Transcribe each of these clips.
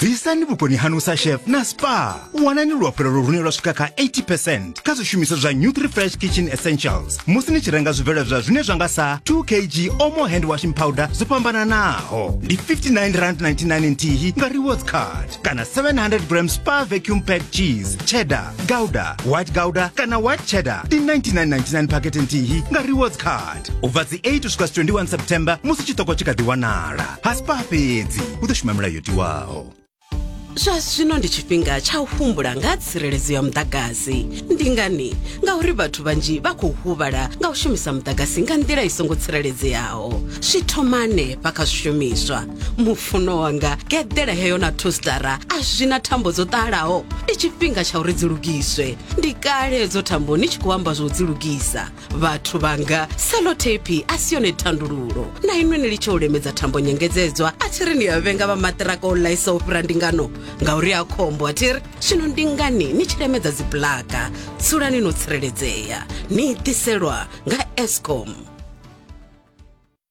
bvisani vhukoni hanu sa chef na spa wanani luafhulelo lune lwa swika kha 80 percent kha zwishumiswa zwa new refresh kitchen essentials musi ni tshi renga zwibveledzwa zwine zwa nga sa 2 kg omo hand washing powder zwo fhambananaho ndi 59 rand 99 nthihi nga rewards card kana 700 gram spa vacuum pack cheese cheddar gouda white gouda kana white cheddar ndi 99.99 pakete nthihi nga rewards card u bva dzi 8 u swika 21 september musi chitoko chikha ḓi wanala haspa fhedzi u ḓo shuma mulayo tiwaho zwa zwino ndi tshifhinga tsha u humbula nga ha tsireledzo ya muḓagasi ndi ngani ngauri vhathu vhanzhi vha khou huvhala nga u shumisa muḓagasi nga nḓila i songo tsireledzeaho zwi thoma hanefha kha zwishumiswa mufuno wanga geḓela heyo na thostara a zwi na thambo dzo ṱalaho ndi tshifhinga tsha uri dzi lugiswe ndi kale dzo thambo ni tshi khou amba zwo dzi lugisa vhathu vhanga selotepi a si yone thandululo na inwe ni litshe u lemedza thambo nyengedzedzwa a thi ri ni a vhenga vha maṱiraka o ḽaisa u fhira ndingano ngauri a khombo a thi ri zwino ndi ngani ni tshi lemedza dzibulaka dzulani no tsireledzea ni itiselwa nga escom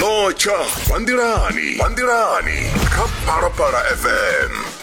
notsha vha nḓilani vha nḓilani kha phalaphala fm